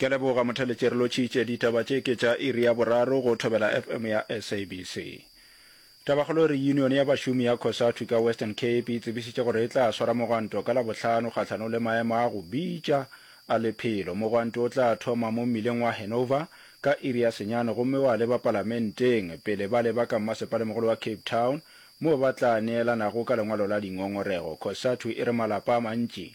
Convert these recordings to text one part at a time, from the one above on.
Ke leboga Motheletje re lotšitše ditaba tše ke tša iri ya boraro go Thobela FM ya SABC. Tabakgolo e re Union ya bašomi ya Cosatu ka Western Cape e tsebišitše gore e tla swara mogwanto ka Labohlano kgahlanong le maemo a go bitša a lephelo. Mogwanto o tla thoma mo mmileng wa Hanover ka iri ya senyane gomme wa leba palamenteng pele ba leba ka mmasepalemogolo wa Cape Town moo ba tla neelanago ka lengwalo la dingongorego. Cosatu e re malapa a mantši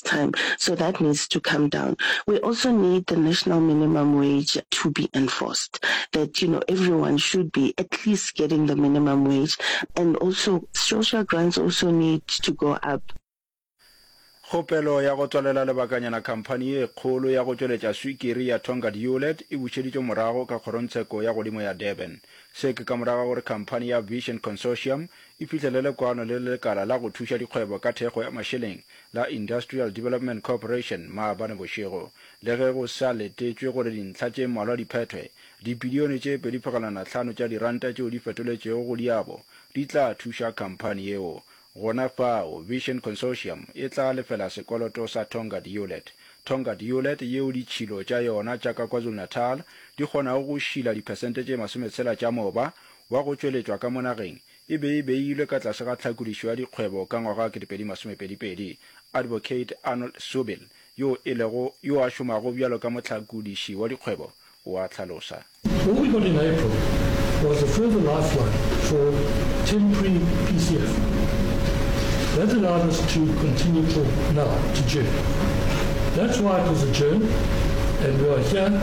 time so that needs to come down. We also need the national minimum wage to be enforced that you know everyone should be at least getting the minimum wage and also social grants also need to go up. Kgopelo ya go tswalela lebakanyana khamphani ye kgolo ya go tšweletša swikiri ya Tongaat Hulet e bušeditšwe morago ka kgorongtsheko ya godimo ya Durban. Se ke ka morago ga gore khamphani ya Vision Consortium e fihlelele kwano le lekala la go thuša dikgwebo ka thekgo ya mašeleng la Industrial Development Corporation maabane bošego. Le ge go sa letetšwe gore dintlha tše mmalwa di phethwe, dibilione tše pedi phegelwana hlano tša diranta tšeo di fetoletšego go diabo di tla thuša khamphani yeo. Gona fao, Vision Consortium e tla lefela sekoloto sa Tonga Diolet. Tonga Diolet, yeo ditšhilo tša yona tša ka KwaZulu-Natal di kgonago go šila diphesente tše masometshela tša moba wa go tšweletšwa ka mo nageng, e be e beilwe ka tlase ga tlhakodišo ya dikgwebo ka ngwaga wa 2022. Advocate Arnold Subil, yo e lego yo a šomago bjalo ka mohlakodiši wa dikgwebo, o a hlalosa. What we got in April was a further lifeline for temporary PCF. That allowed us to continue till now, to June. That's why it was adjourned and we are here.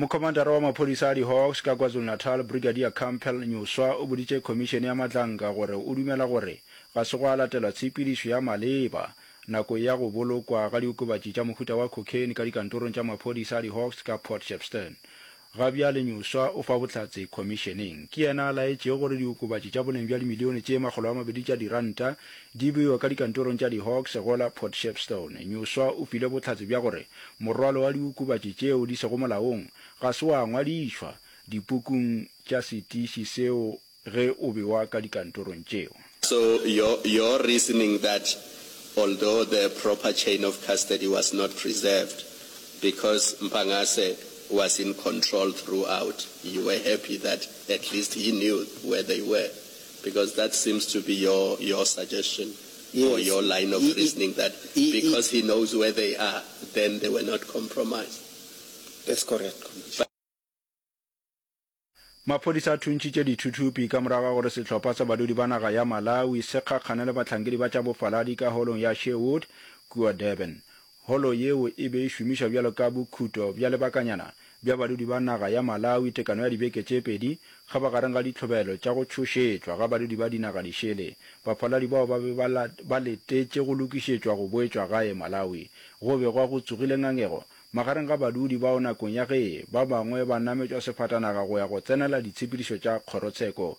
Mokhomandara wa maphodisa a di-Hawks ka KwaZulu-Natal, Brigadier Campbell Nyuswa o boditše khomišene ya matlanka gore o dumela gore ga se gwa latelwa tshepedišo ya maleba nakong ya go bolokwa ga diokobatši tša mohuta wa cocaine ka dikantorong tša maphodisa a di-Hawks ka Port Shepstone. Ga bjale Nyuswa o fa bohlatse khomišeneng. Ke yena a laetšego gore diokobatši tša boleng bja dimilione tše makgolo a mabedi tša diranta Di bewa ka dikantorong tša di-Hawks go la Port Shepstone. Nyuswa o file bohlatse bja gore morwalo wa diokobatši tšeo di sego molaong ga se wa ngwadišwa dipukung tša setiši seo ge o bewa ka dikantorong tšeo. So your your reasoning that although the proper chain of custody was not preserved because Mpangase was in control throughout, you were happy that at least he knew where they were, Because that seems to be your, your suggestion yes. or your line of reasoning that because he knows where they are, then they were not compromised. That's correct, Commissioner. Maphodisa a thuntšitše dithuthupi ka morago ga gore sehlopha sa badudi ba naga ya Malawi se kgakgane le bahlankedi ba tša bofaladi ka holong ya Sherwood kua Durban. Holo yeo e be e šomišwa bjalo ka bokhuto bja lebakanyana bja badudi ba naga ya Malawi tekano ya dibeke tše pedi ga ba gareng ga ditlhobelo tša go tšhošetšwa ga badudi ba dinaga dišele baphaladi bao ba be ba letetše go lokišetšwa go boetšwa gae Malawi. Go be gwa go tsogile ngangego magareng ga badudi bao nakong ya ge ba bangwe ba nametšwa sefatanaga go ya go tsenela ditshepedišo tša kgorotsheko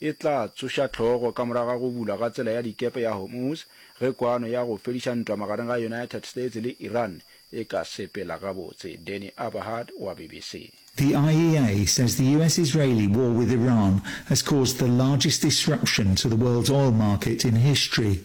e tla tsoša hlogo ka morago ga go bulwa ga tsela ya dikepe ya Hormuz ge kwano ya go fediša ntwa magareng ga United States le Iran e ka sepela gabotse. Danny Aberhard wa BBC. The IEA says the US-Israeli war with Iran has caused the largest disruption to the world's oil market in history.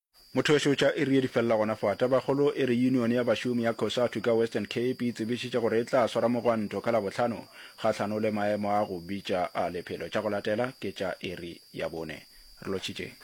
Mothoweso tša iri ye di felela gona fa. Tabakgolo e re yunione ya bašomi ya Cosatu ka Western Cape e tsebišitše gore e tla swara mogwanto ka Labohlano kgahlano le maemo a go bitša a lephelo. Tša go latela ke tša iri ya bone. Re lotšhitšeng.